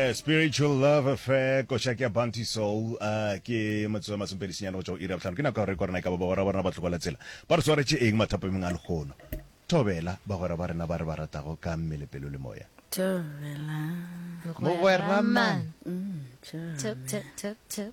A Spiritual Love Affair, Košaki ya Bounty Soul, a ke metsotso e masomepedi senyane go tšwa go iri ya bohlano. Ke nako ya go rekwa rena e ka ba bagwera ba rena ba tlogo la tsela ba re swaretše eng mathapameng a lehono. Thobela, bagwera ba rena ba re ba ratago ka mmele, pelo le moya. Thobela. Mogwera man. Tšo, tšo, tšo, tšo.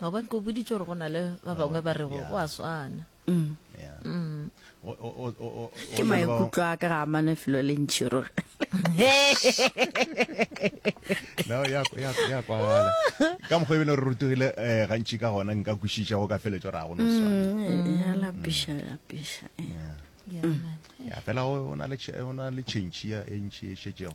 gobane ko boditse gore go na le ba bangwe ba rego go a swana ke maikutlo a ka ga amane felo le ntšhi rore ya kwala ka mokgwa ebile re rutogile um eh, gantši ka gona nka kwešiša go ka feletso ra go noswanalapišalapiša mm, eh, eh, ya fela o na le tšhentšhi ya e ntšhi e šetšego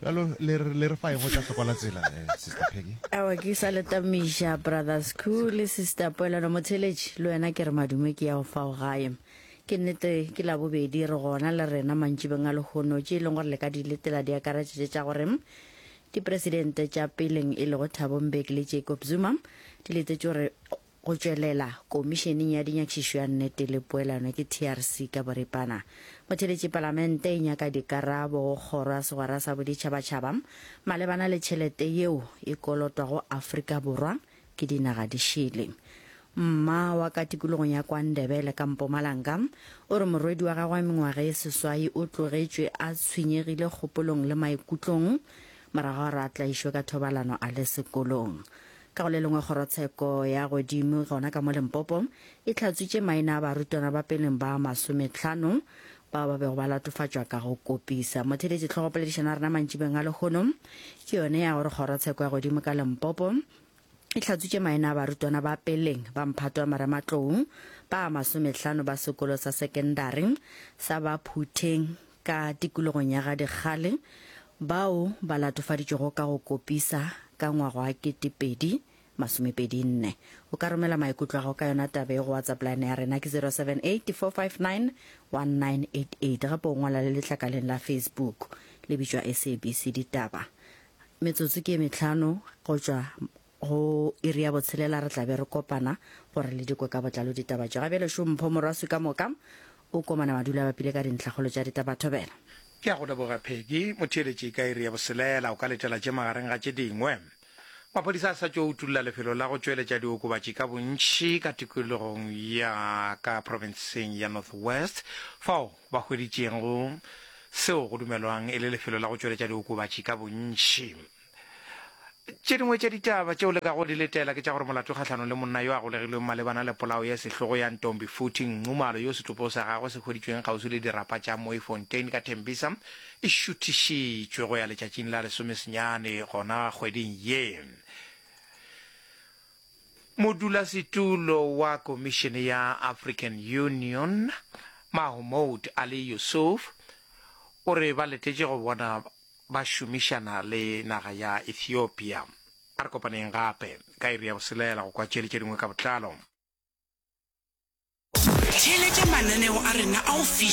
Bjalo le re le re fa ego tša hlokola tsela eh, Sister Peggy. Awa ke sa le tamiša Brothers Ku le Sister Poelano Motheletši le wena ke re madume ke ya go fao gae. Ke nnete ke la bobedi re gona le rena mantšibeng a lehono tše e leng gore le ka di letela di akaretša tše tša gore dipresidente tša peleng e lego Thabo Mbeki le Jacob Zuma di letetše gore Go tšwelela, Komišeneng ya Dinyakišišo ya Nnete le Poelano ke TRC ka boripana. Motheeletši Palamente e nyaka dikarabo go Kgoro ya Segwera sa Boditšhabatšhaba malebana le tšhelete yeo e kolotwago Afrika Borwa ke dinaga di šele. Mma wa ka tikologong ya kwa Ndebele ka Mpumalanga o re morwedi wa gagwe wa mengwaga e seswai o tlogetšwe a tshwenyegile kgopolong le maikutlong morago ga gore a tlaišwe ka thobalano a le sekolong. Ka go le lengwe, kgorotsheko ya godimo gona ka mo Limpopo e hlatswitše maina a barutwana ba peleng ba masometlhano bao ba bego ba latofatšwa ka go kopisa. Motheeletši tlhogopoledišano ya rena mantšibeng a lehono ke yone ya gore kgorotsheko ya godimo ka Limpopo e hlatswitše maina a barutwana ba peleng ba mphato wa marematlou ba masometlhano ba sekolo sa sekendari sa Baphutheng Ka tikologong ya ga Dikgale, bao ba latofaditšwego ka go kopisa ka ngwaga wa 2024. O ka romela maikutlo a gago ka yona taba ye go WhatsApp line ya rena ke 078 459 1988 gape o ngwala le letlakaleng la Facebook le bitšwa SABC Ditaba. Metsotso ke e mehlano go tšwa Go iri ya botshelela re tla be re kopana gore le dikwe ka botlalo ditaba tše. Ga bjale šo Mpho Morwaswi ka moka o komana madula a bapile ka dintlhakgolo tša ditaba. Thobela. Ke a go leboga Peggy. Motheeletši ka iri ya boselela o ka letela tše magareng ga tše dingwe. Maphodisa a sa tšo utulla lefelo la go tšweletša diokobatši ka bontši ka tikologong ya ka profenseng ya North West fao ba hweditšego seo go dumelwang e le lefelo la go tšweletša diokobatši ka bontši. Tše dingwe tša ditaba tšeo le ka go di letela ke tša gore molato kgahlanong le monna yo a golegilweng malebana le polao ya sehlogo ya Ntombi Futhi Nxumalo yo setlopo sa gagwe se hweditšweng kgauswi le dirapa tša Mooifontein ka Tembisa e šuthišitšwe go ya letšatšing la lesomesenyane gona kgweding ye. Modulasetulo wa Komišene ya African Union, Mahomoud Ali Yusuf, o re ba letetše go bona Ba šomišana le naga ya Ethiopia. A re kopaneng gape ka iri ya boselela go kwa tšeli tše dingwe ka botlalo. Theeletša mananeo a rena a go fihla.